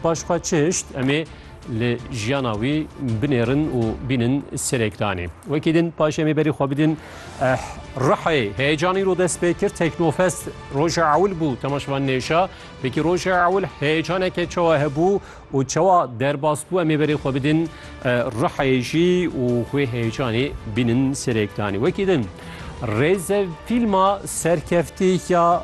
Paş xwe çişt em ê li jiyana wî binêrin û bînin serêkdanê. Wekî din paş em ê berî xwe bidin Rihê heyecanî ro dest pê kir Teknofest roja ewil bû temaşevan nêşa wekî roja ewil heyecaneke çawa hebû û çawa derbas bû em ê berê xwe bidin Rihê jî û xwê heyecanê bînin serêkdanê. Wekî din rêze fîlma serkeftî ya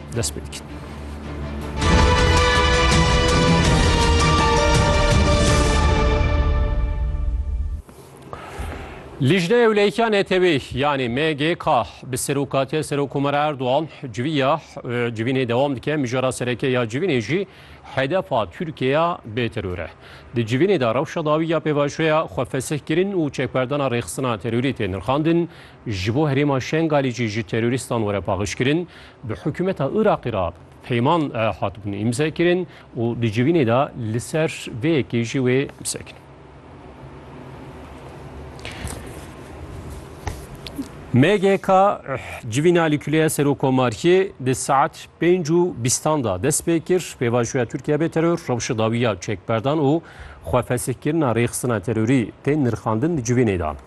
dest pê dikin. Lijne Ewleyka Netewî yanî MGK bi serokatiya Serokkomara Erdogan civîya civînê dewam dike mijara sereke ya civînê jî hedefa Tirkiyeya bê teror e. Di civînê de rewşa dawî ya pêvajoya xwe fesih kirin û çekberdana rêxistina terorî tê nirxandin Ji bo herêma Şengalê jî ji terorîstan were paxişkirin, bi hikûmeta Iraqê re peyman hatibûn îmzekirin û di civînê de li ser vê yekê jî wê sekin. MGK civîna li Kuleya Serokomariyê di saet pênc û bîstan de dest pê kir pêvajoya Tirkiye bê teror rewşa dawiya çekberdan û xwefesihkirina rêxistina terorî tên nirxandin di civînê de.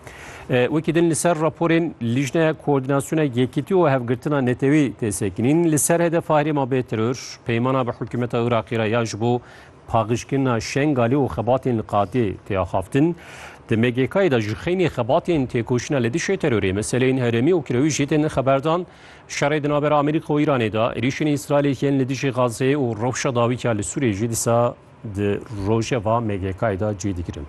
Wekî din li ser raporên Lîjneya Koordînasyona Yekîtî û Hevgirtina Netewî tê sekinîn, li ser hedef a herêma bê teror, peymana bi hikûmeta Iraqê re ya ji bo paqijkirina Şengalê û xebatên li qadê tê axaftin. Di MGK'ê de ji xeynî xebatên têkoşîna li dijî terorê, meseleyên herêmî û kirewî jî tên xeberdan. Şerê di navbera Amerîka û Îranê de, êrîşên Îsraîlê yên li dijî Gazeyê û rewşa dawî ya li Sûriyê jî dîsa Di rojeva MGK'ê de cî digirin.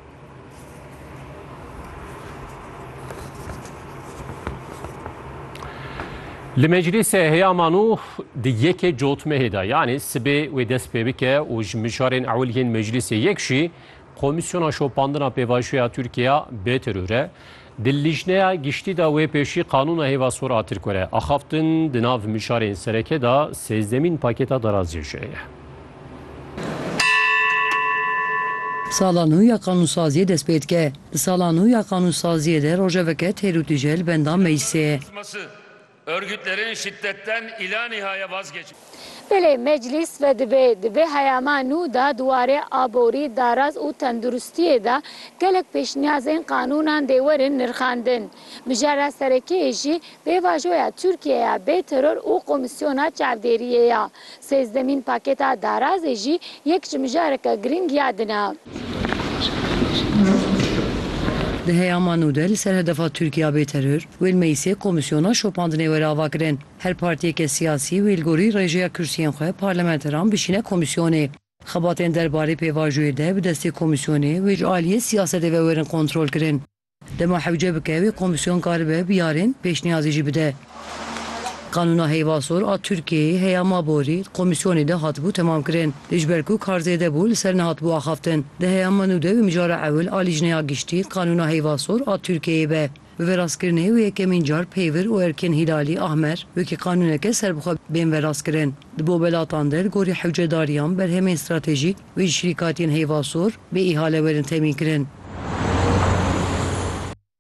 Li meclîsê heyama nû di yekê cotmehê de yanî sibê wê dest pê bike û ji mijarên ewil yên meclîsê yek jî Komîsyona Şopandina Pêvajoya Tirkiye bê teror e. Di Lîjneya Giştî de wê pêşî qanûna hêva sor a Tirkore axaftin di nav mijarên sereke de sêzdemîn pakêta daraziyê jî heye. Sala nû ya qanûnsaziyê dest pê dike. Di sala nû ya qanûnsaziyê de rojeveke têr û tije li benda meclisê ye. Örgütlerin şiddetten ila nihaya vazgeçin. Belê Meclîs vedibê, dibê heyama nû de di warê aborî, daraz û tenduristiyê de gelek pêşniyazên qanûnan dê werin nirxandin. Mijara serekiyê jî pêvajoya Tirkiye ya bê teror û komîsyona çavdêriyê ya. Sêzdemîn pakêta darazê jî yek ji mijareke girîng ya din e. Di heyama nû de li ser hedefa Tirkiya bê teror, wê li Meyisê komîsyona şopandinê were avakirin. Her partiyeke siyasî wê li gorî rêjeya kursiyên xwe parlamenteran bişîne komîsyonê. Xebatên derbarê pêvajoyê de bi destê komîsyonê wê ji aliyê siyasetê ve werin kontrolkirin. Dema hewce bike wê komîsyon karibe bi yarên pêşniyazî jî bide. Qanûna heyvasor a Tirkiyeyê heya ma borî di komîsyonê de hatibû temamkirin. Lê ji ber ku kar zêde bû li ser nehatibû axaftin. Di heya ma nû de wê mijara ewil a Lîjneya Giştî Qanûna Heyvasor a Tirkiyeyê be. Bi vêrastkirinê wê yekemîn car Peyvir û Erkên Hîlalî Ahmer wekî qanûneke serbixwe bên vêrastkirin. Di bo welatan de li gorî hewcedariyan berhemên stratejîk, Wê şirîkatiyên heyvasor bê îhale werin temînkirin.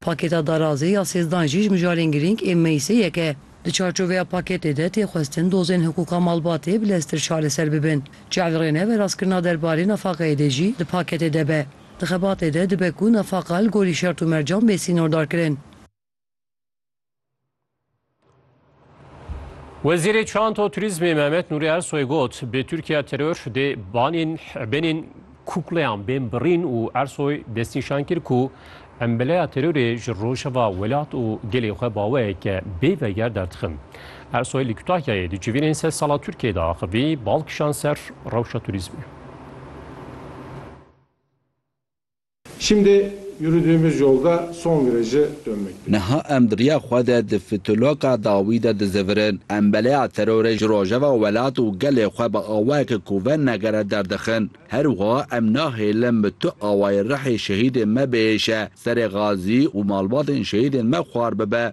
Pakêta darazê ya sêzdan jî ji mijarên girîng ên meyîsêyek e. Di çarçoveya pakêtê de tê xwestin dozên hiqûqa malbatê bi leztir çareser bibin. Çavdrêne veraskirina derbarê nefaqeyê dê jî di pakêtê de be. Di xebatê de dibe ku nefaqa li gorî şert û mercan bê sînordarkirin. Wezîrê Çanto Turizmê Mehmet Nûrî Ersoy got, bi Tirkiya teror dê banên benên kukleyan bên birîn û Ersoy destnîşan kir ku em beleya terorê ji rojeva welat û gelê xwe baweyeke bê veger derdixin. Ersoy li Kütahyayê di civînên sed sala Tirkiyeyê de axivî bal kişan ser rewşa turizmê. Şimdi yürüdüğümüz yolda son virajı dönmekteyiz. Niha em di riya xwe de di fitulaka dawî de dizevirin. Em beleya terorê ji rojeva welat û gelê xwe bi awayeke ku venegere derdixin. Her wiha em nahêlin bi tu awayê rihê şehîdên me bihêşe, serê xazî û malbatên şehîdên me xwar bibe.